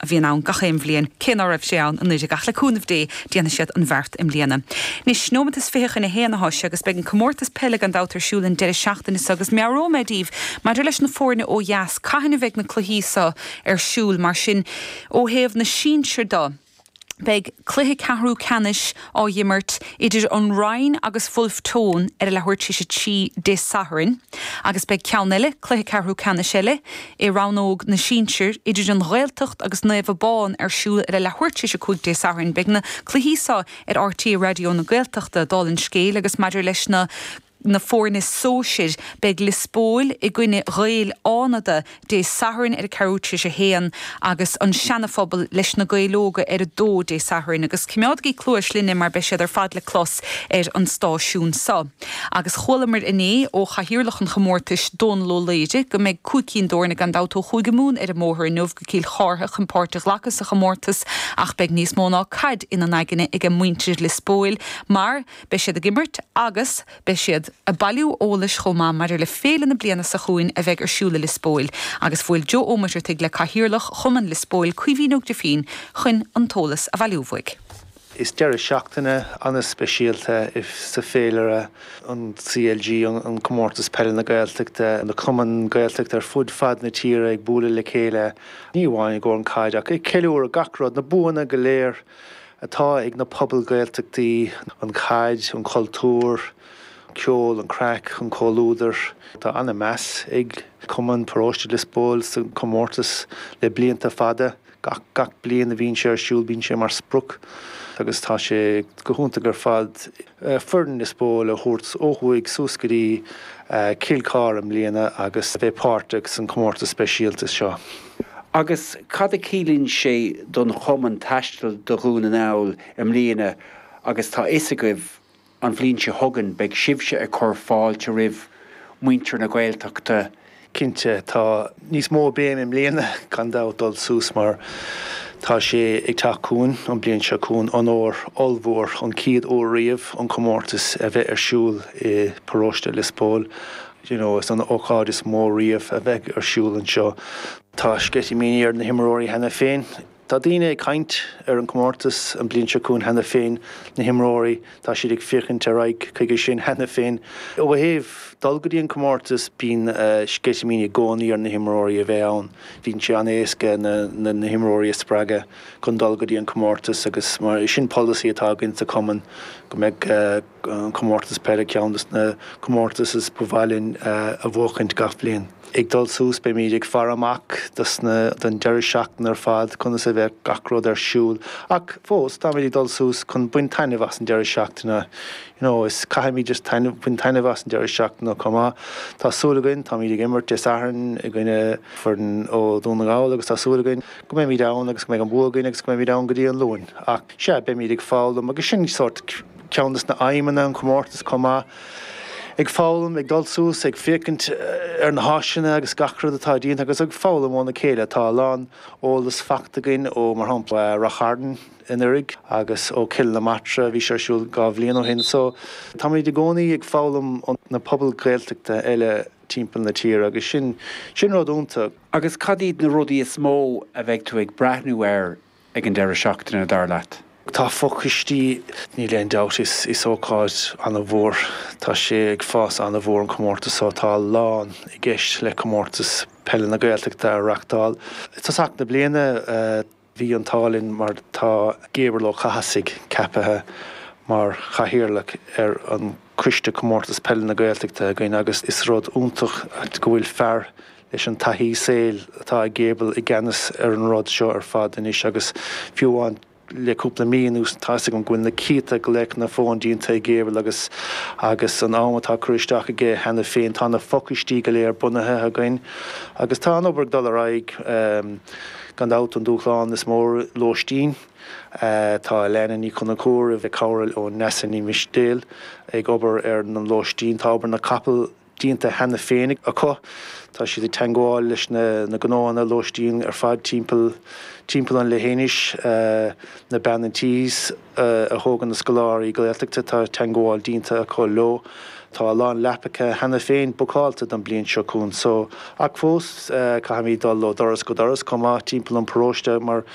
a bhíonn ann gach aon bhliain, cé ná raibh sé ann anuiridh ach le cúnamh Dé déanfaidh siad an bheart i mbliana. Anois, nóimeat is fiche chun a haon anois agus beidh an comórtas peile gan dabht ar siúl an deireadh seachtaine so agus meabhróidh mé daoibh maidir leis na fóirne ó dheas cathain a bheidh na cluichí so ar siúl. Mar sin ó thaobh na sinsir do, beidh cluiche ceathrú ceannais. á dh'imirt idir an Rinn agus Bhulf Tón ar a leathuair tar éis a trí Dé Sathairn agus beidh ceann eile, cluiche ceathrú ceannais eile, i rannóg na sinsear idir an Ghaeltacht agus Naomh Abán ar siúl ar a leathuair tar éis a cúig Dé Sathairn. Beidh na cluichí so ar RTÉ Raidió na Gaeltachta, dála an scéil, agus maidir leis na. na foirne sóisir. Beidh Lios Póil i gcoinne Ghaeil Fhánada Dé Sathairn ar a ceathrú tar éis a haon agus An Seanaphobal leis Na Gaeil Óga ar a dó Dé Sathairn. Agus coimeádaigí cluas linne mar beidh siad ar fad le clos ar an stáisiún so. Agus chualamar inné ó chathaoirleach an chomórtais, Dónal Ó Laoire, go mbeidh cúig cinn d'fhoirne gan dabht ó Chúige Mumhan ar an mbóthar inniu go Cill Chartha chun páirt a ghlacadh sa chomórtas ach beidh níos mó ná caid ina n-aigne ag muintir Lios Póil mar Beidh siad ag imirt agus beidh siad ag bailiú eolais chomh maith maidir le féile na bliana seo chugainn a bheidh ar siúl i Lios Póil agus bhuail Joe Ó Muircheartaigh le Cathaoirleach Chumann Lios Póil, Caoimhín Ó Grifín, chun an t-eolas a bhailiú uaidh. Is deireadh seachtaine ana-speisialta í sa féilire an CLG, an Comórtas Peile na Gaeltachta, na cumainn Gaeltachta ar fud fad na tíre ag bualadh le chéile, ní amháin i gcomhair an chaid ach ag ceiliúradh gach rud, na buanna go léir atá ag na pobail Gaeltachtaí, an chaid, an cultúr, ceol, an craic, an comhluadar. Tá ana-mheas ag Cumann Paróiste Lios Póil sa comórtas le blianta fada. Gach gach bliain a bhíonn sé ar siúl bíonn sé mar sprioc agus tá sé go hiontach ar fad. foireann Lios Póil a thabhairt ó thuaidh suas go dtí Cill Chartha i mbliana agus bheith páirteach san comórtas speisialta seo. Agus cad a chiallaíonn sé don chumann taisteal do Dhún na nGall i mbliana agus tá fhios agaibh an bhliain seo chugainn beidh sibhse ag cur fáilte roimh muintir na Gaeltachta Cinnte, tá níos mó béim i mbliana gan dabht dul suas mar tá sé ag teacht chugainn, an bliain seo chugainn, onóir ollmhór, an chéad uair riamh an comórtas a bheith ar siúl i bparóiste Lios Póil. You know, is an ócáid is mó riamh a bheidh ar siúl anseo. Tá sceitimíní ar na himreoirí cheana féin. Tá daoine ag caint ar an comórtas an bliain seo chugainn cheana féin, na himreoirí, tá siad ag féachaint ar aghaidh chuige sin cheana féin. Ó thaobh dul go dtí an comórtas, bíonn sceitimíní i gcónaí ar na himreoirí a bheith ann. Bíonn sé an-éasca na himreoirí a spreagadh chun dul go dtí an comórtas agus mar sin polasaí atá againn sa chumann go mbeadh, an Comórtas Peile ceann de na comórtais is ba mhaith linn a bhuachaint gach bliain. Ag dul suas beimíd ag faire amach don deireadh seachtaine ar fad conas a bheadh gach rud ar siúl ach fós táimíd ag dul suas chun baint taitneamh as an deireadh seachtaine you know is caithfimíd just taitneamh baint taitneamh as an deireadh seachtaine chomh maith. Tá súil againn táimíd ag imirt Dé Sathairn i gcoinne foireann ó Dhún na nGall agus tá súil againn go mbeimíd ann agus go mbeidh an bua againn agus go mbeimíd ann go dtí an Luan ach sea beimíd ag foghlaim agus sin sórt Ceann des na haidhmeanna an chomórtas chomh maith. Ag foghlaim, ag dul suas, ag féachaint ar na háiseanna agus gach rud atá déanta agus ag foghlaim óna chéile. Tá a lán eolas faighte againn ó mar shampla Rath Chairn anuiridh agus ó Chill na Martra bhí sé ar siúl dhá bhliain ó shin. So táimíd i gcónaí ag foghlaim ó na pobail Ghaeltachta eile timpeall na tíre agus sin sin rud iontach. Agus cad iad na rudaí is mó a bheidh tú ag breathnú air ag an deireadh seachtaine, dar leat? Tá fochoistí, níl aon dabht, is is ócáid an-mhór. Tá sé ag fás an-mhór an comórtas so. Tá a lán i gceist le Comórtas Peile na Gaeltachta a reachtáil. I dtosach na bliana bhí an t-ádh linn mar tá Gabriel Ó Cathasaigh ceapaithe mar chathaoirleach ar an Coiste Comórtas Peile na Gaeltachta againn agus is rud iontach é go bhfuil fear leis an taithí saoil atá ag Gable i gceannas ar an rud seo ar fad anois agus fiú amháin le cúpla mí anuas tá 'fhios agam go bhfuil na céadta glaochanna fóin déanta ag Gable agus agus an am atá curtha isteach aige cheana féin tá na fochoistí go léir bunaithe againn agus tá an obair ag dul ar aghaidh gan dabht an dúshlán is mó lóistín tá Elena Ní Chonchúir i mbun cúram le cabhair ó Neasa Ní Mhistéil ag obair ar na lóistín tá obair na gcapall déanta cheana féin acu. Tá siad i dteangmháil leis na gnónna lóistín ar fad timpeall timpeall an leithinis, na Bean an Tís a thógann na scoláirí Gaeltachta tá teangmháil déanta acu leo. Tá a lán leapacha cheana féin bookálta don bliain seo chugainn so, ach fós caithfimíd dul ó dhoras go doras chomh maith timpeall an paróiste mar